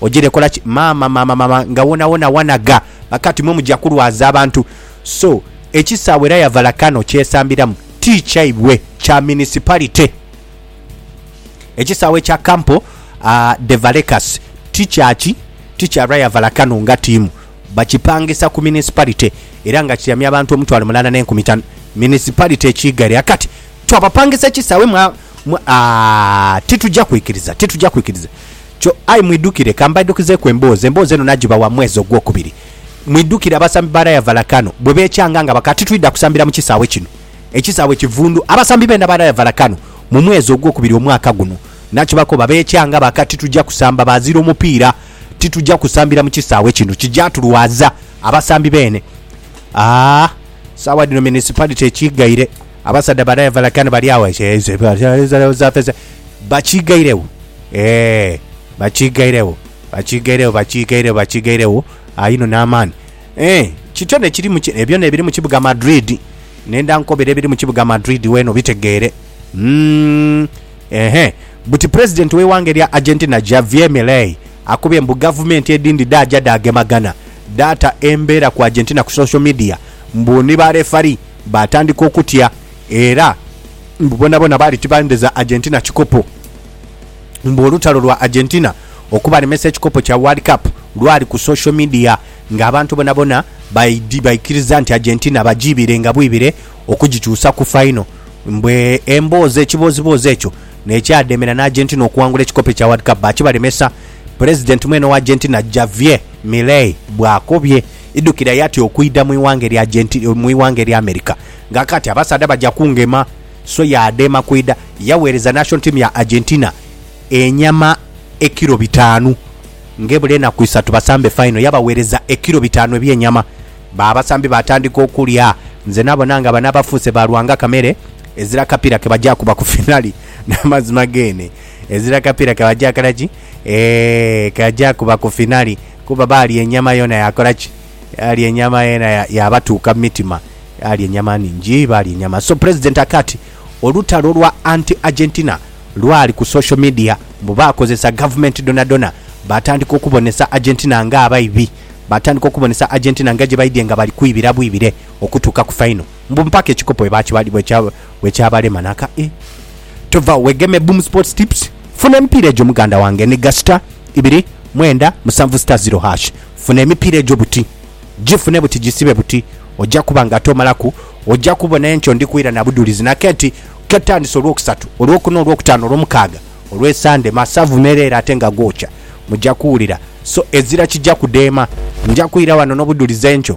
Ojere kola ki maama maama maama nga wona wona wanaga bakati mwe muja kulwaza abantu so ekisawe era yavala Kano kyesambiramu ti kyaibwe kya municipality ekisawe kya Campo uh, de Valecas ti kyaki ti kya Rayavala Kano nga tiimu bakipangisa ku municipality era nga kiramya abantu omutwalo mulana ne nkumi tano municipality ekiigare akati twabapangisa ekisawe mwa, mwa uh, tituja kwikiriza tituja kwikiriza Kyo, aye mwidhukire, ka mbaidhukizeeku emboozi, emboozi eno nagibawa mu mwezi ogwokubiri. Mwidhukire, abasambi ba Rayavala kano bwe beecanga nga baka, Titwidha kusambira mu kisaawe kino, ekisaawe kivundu. Abasambi beena ba Rayavala kano mu mwezi ogwokubiri omwaka guno nakibakoba, beecanga baka, Titugya kusamba baazira omupiira, titugya kusambira mu kisaawe kino, kigya tulwaza. Abasambi beene, aa, saawa dhino municipality ekighaire. Abasaadha bana evala kani bali agho bakiigairegho ee bakiigairegho bakiigairegho bakiigairegho bakiigairegho aino n'amaani ee kityo nekiri mu ki ebyona ebiri mu kibuga Madrid nenda nkobere ebiri mu kibuga Madrid weena obitegeere mm ehe buti Pulezidenti w'eighanga erya Argentina Javier Milei akubye mbu gavumenti edhindi dhaaja dhaagemagana dhaata embeera ku Argentina ku social media mbu ni ba refari Baatandika okutya era mbu boonaboona baali tibandheza Argentina kikopo. Mbu olutalo lwa Argentina okubalemesa ekikopo kya World Cup lwali ku social media ng'abantu bonabona baidhi baikiriza nti Argentina bagiibire nga bwibire okugikyusa ku faino. Mbu emboozi ekibooziboozi ekyo n'ekyademera n'Argentina okuwangula ekikopo ekya World Cup baakibalemesa. Pulezidenti mwene owa Argentina Javier Milei bw'akobye. Idhukire yati okwidha mu ighanga erya Genti, mu ighanga erya America. Nga kati abasaadha baja kungema, so ye adheema kwidha. Yaweereza national team ya Argentina enyama ekilo bitaanu. Ng'ebula enaku isatu basambe final, yabaweereza ekilo bitaanu eby'enyama. Ba abasambi baatandika okulya. Nze nabona nga bano abafuuse ba Lwanga kamere ezira kapiira ke baja kuba ku finali. N'amazima geene, ezira kapiira ke baja kola ki? Eeh, ke baja kuba ku finali. Kuba baalya enyama yoona yaakola ki? Yaalya enyama yoona yaabatuuka mu mitima. Baalya enyama nhingi, baalya enyama. So Pulezidenti akaati olutalo lwa anti-Argentina lwali ku social media. Mbu baakozesa gavumenti dhonadhona, baatandika okubonesa Argentina ng'abaibi. Baatandika okubonesa Argentina nga gye baidhye nga bali kwibira bwibire okutuuka ku faino. Mbu mpaka ekikopo bwekyabalema naka e tovagho wegeme Boom Sports Tips funa emipiira egyo muganda wange ni ga star ibiri mwenda musanvu star zero hash funa emipiira egyo buti gifune buti gisibe buti oja kuba nga ate omalaku oja kubona enkyo ndi kwira na budhulizi naka nti ketandise olwokusatu, olwokuna, olwokutaano, olwomukaaga, olwesande masavu mereere ate nga gookya muja kuwulira so ezira kija kudeema nja kwira wano nobudhulizi enkyo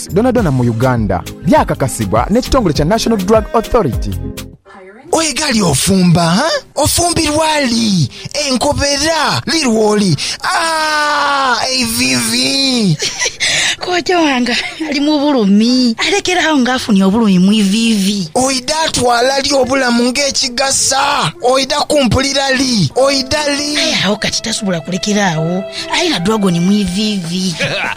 dhonadhona mu Uganda, byakakasibwa n'ekitongole kya National Drug Authority. Oye ghali ofumba ha? Ofumbirwa li? Enkobera li lwoli? Aah! Eiviivi! Kojja wange ali mu bulumi. Alekera agho nga afunye obulumi mu iviivi. Oidha twala li obulamu ng'ekigasa? Oidha kumpulira li? Oidha li? Aye agho kati tasobola kulekera agho. Alina dragon mu iviivi.